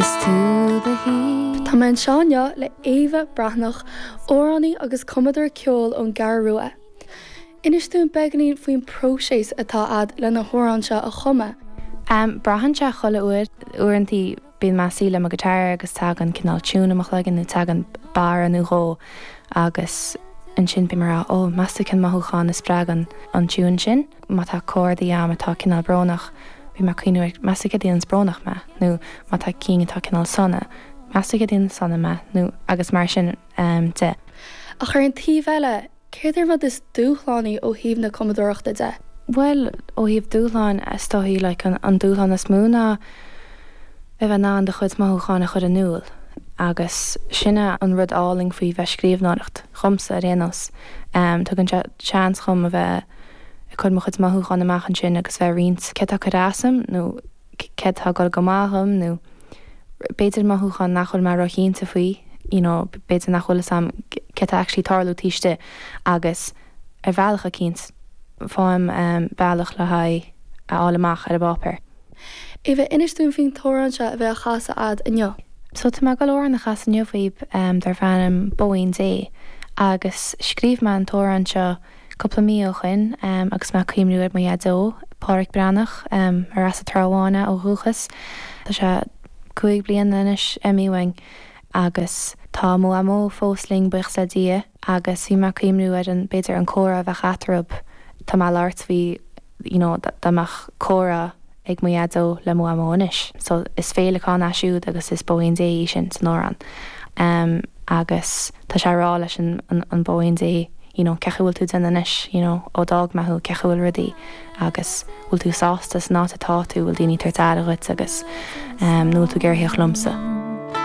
Is tú the heat. Tá mé anseo inniu le Éabha Breathnach, amhránaí agus cumadóir ceoil ón gCeathrú Rua. Inis dúinn beagáinín faoin próiseas atá agat le na hamhráin seo a chumadh. Em, braitheann sé chuile uair, uaireantaí bíonn mé suí le mo guitar agus tagann cineál tune i mo chloigeann nó tagann barra nó dhó agus ansin bím a' rá 'ó, meas tú cén mothúchán a spreagann an tune sin? Má tá cordaí a'm atá cineál brónach, bhí mé ag cuimhniú, meas tú céard a dhéanann brónach mé, nó má tá cinn atá cineál sona, meas tú céard a dhéanann sona mé, nó agus mar sin de. Ach ar an taobh eile, céard é an rud is dúshlánaí ó thaobh na cumadóireachta de? Bhuel, ó thaobh dúshláin, is dóigh, like, an dúshlán is mó ná bheith in ann do chuid mothúcháin a chur in iúl, agus sin é an rud álainn faoi bheith scríobhnóireacht, dhomsa ar aon nós, tugann sé seans dhom a bheith, ag cur mo chuid mothúchán amach ansin agus bheith ag roinnt céard atá ag cur as dhom nó céard atá ag dul go maith dhom nó b'fhéidir mothúchán nach bhfuil mé róchinnte faoi, you know b'fhéidir nach bhfuil fhios a'm céard atá actually tarlú taobh istigh agus ar bhealach eicínt, faighim bealach le haghaidh a fháil amach ar an bpáipéar. Éabha, Inis dúinn faoin t-amhrán seo a bheidh á chasadh a'd inniu. So tá mé ag dul amhrán a chasadh inniu dhaoib darb ainm Bóín Dé agus scríobh mé an t-amhrán seo, cúpla mí ó shoin agus mé ag cuimhniú ar mo Dhaideo, Páraic Breathnach, ar as an Trá Bháin ó dhúchas. Tá sé cúig bliana anois imithe uainn agus tá mo Mhamó fós linn, buíochas le Dia, agus bhí mé ag cuimhniú ar an, b'fhéidir an comhrá a bheadh eatarthu, tá mé ag labhairt faoi you know dá mbeadh comhrá, ag mo dhaideo le mo mhamó anois so is féileacán é siúd agus is bóín Dé í sin san amhrán em agus tá sé a' rá leis an an bóín Dé you know cén chaoi a bhfuil tú déanamh anois you know ó d'fhág mé thú cén chaoi a bhfuil rudaí agus bhfuil tú sásta san áit atá tú bhfuil daoiní tabhairt aire dhuit agus em nó bhfuil tú ag iarraidh a thíocht liomsa.